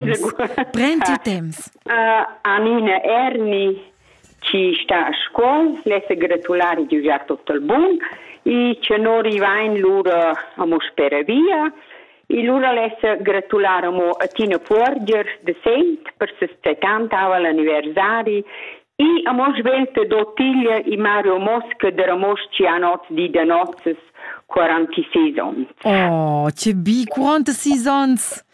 Prend il temps. Uh, Anina Erni chi sta a Scuol, l'es gratulari di ugiar tutto il bun e che non rivain lura amo spera via. E lura l'es gratular amo a Tina Puorgers de Saint per ses 70 aval anniversari e amo svelte d'Ottiglia e Mario Mosca de Ramos Cianots di da nozes 46 ons. Oh, che bi, quanti seasons!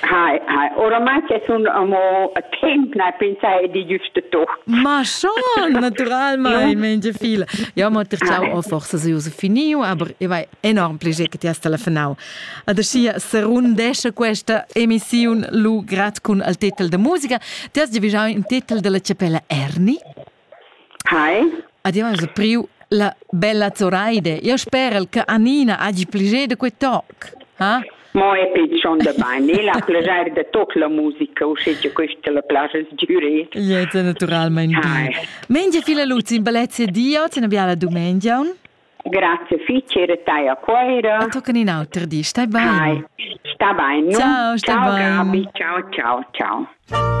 Hai, hai. Oramai che sun amo a temp, na pensai di giusto to. Ma schon, naturalmein, Mengia fila. Jo, mo ter ciao, oh, forse se uso finiu, aber e vai enorm piacere che ti has telefonau. Adesso serundesce questa emissione lu grad con il titolo de musica. Ti has già in titolo della cepella Erni? Hai. Ad jau esa priu la bella Zoraide. Jau sperel che Annina hagi piager da quei toc. Ha? Mo è pigion da bain. E la piager da toc la musica, uschè che questa la plaja sgüre. Ja, es naturalmente bene. Mengia viele Luzi in bellezze Dio, te ne biala dumengiaun. Grazie fitch, era tai a Coira. Dann tocken in auter di, stai bene. Hai, sta bene. Ciao, sta bene. Ciao, Gabi, ciao, ciao, ciao.